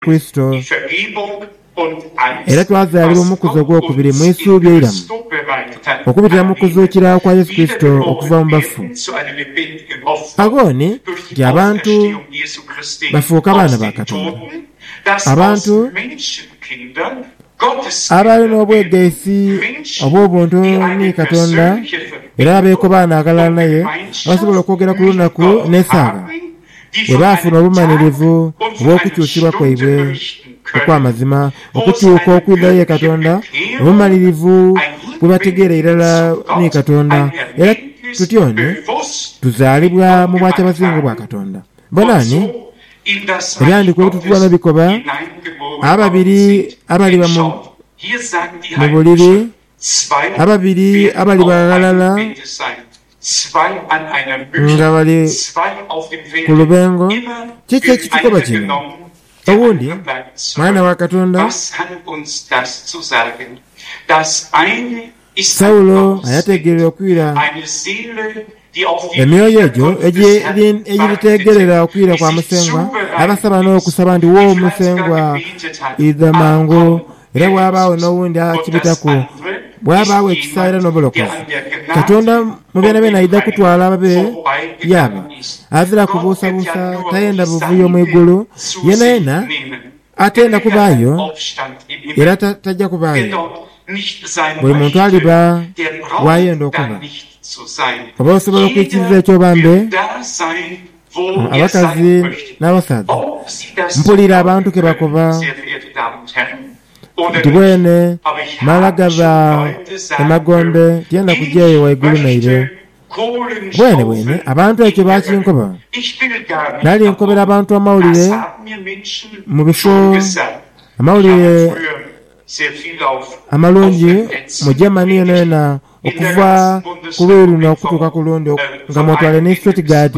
Kurisito, era twazaalibwa mu mukuzi ogw'okubiri mu isuubi eiramu okubitira mu kuzuukira kwa Yesu Kurisito okuva mu bafu. Pa booni nti abantu bafuuka baana ba Katonda. Abantu abaali n'obwegaisi obw'obuntu ni Katonda era abeekobaana aghalala naye, basobola okwogera ku lunaku n'esaawa. bwe baafuna obumanirivu obw'okukyusibwa kwaibwe okw'amazima, okukyuka okwidha ye Katonda, obumanirivu bwe bategeera irala ni Katonda, era tutyo ni tuzaalibwa mu bwakyabasingwa obwa Katonda. Bonani ebyandikwa ebitutwala bikoba ababiri abaliba mu buliri ababiri abali baghalala nga bali ku lubengo. Kiki ekitukoba kino? Owundi mwana wa Katonda. Saulo nga yategeire okwira. Emyoyo egyo egiriteegerera okwira kwa Musengwa abasaba n'okusaba nti, Wo Musengwa, idha mangu. Era bwabaagho n'owundi akibitaku, bwabaagho ekisa era n'obulokozi. Katonda mu byonabyona aidha kutwala ababe yaaba. Adhira kubuusabuusa, tayenda buvuyo mu igulu yeenayeena. Atenda kubaayo era taja kubaayo. Buli muntu aliba waayenda okuba. Oba osobola okwikiriza ekyo oba mbe? Abakazi n'abasaadha, mpulira abantu ke bakoba nti, Bwene, mala gaba emagombe, tyenda kuja eyo waigulu naire. Bwenebwene abantu ekyo baakinkoba. Nali nkobera abantu amawulire mu bifo amawulire amalungi mu Germany yonayona okuva ku luuyi luno okutuuka ku lundi, nga mwotwale ni Stuttgart,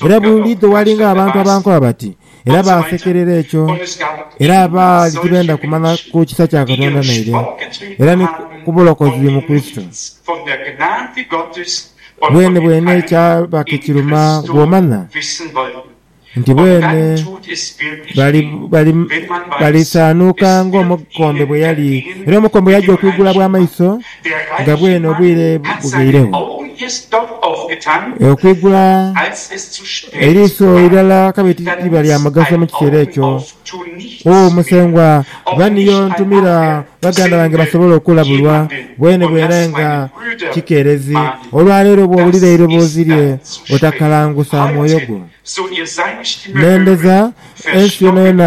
era buli lw'idho waalinga abantu abankoba bati, era baasekerera ekyo, era abaali tibenda kumanya ku kisa kya Katonda naire, era ni ku bulokozi mu Kurisito. Bwenebwene kyaba kikiruma bw'omanya nti bwene balisaanuuka ng'omukombe bwe yali. Era omukombe yaja okwigula bw'amaiso. Nga bwene obwire bughairegho, okwigula eriiso eirala kabe tiliba lya mugaso mu kiseera ekyo. O Musengwa, ba niyo ntumira baganda bange basobole okulabulwa, bwene bwene nga kikeerezi. Olwa leero bw'owulira eiroboozi lye, otakalangusa mwoyo gwo. Nembeza ensi yonayona.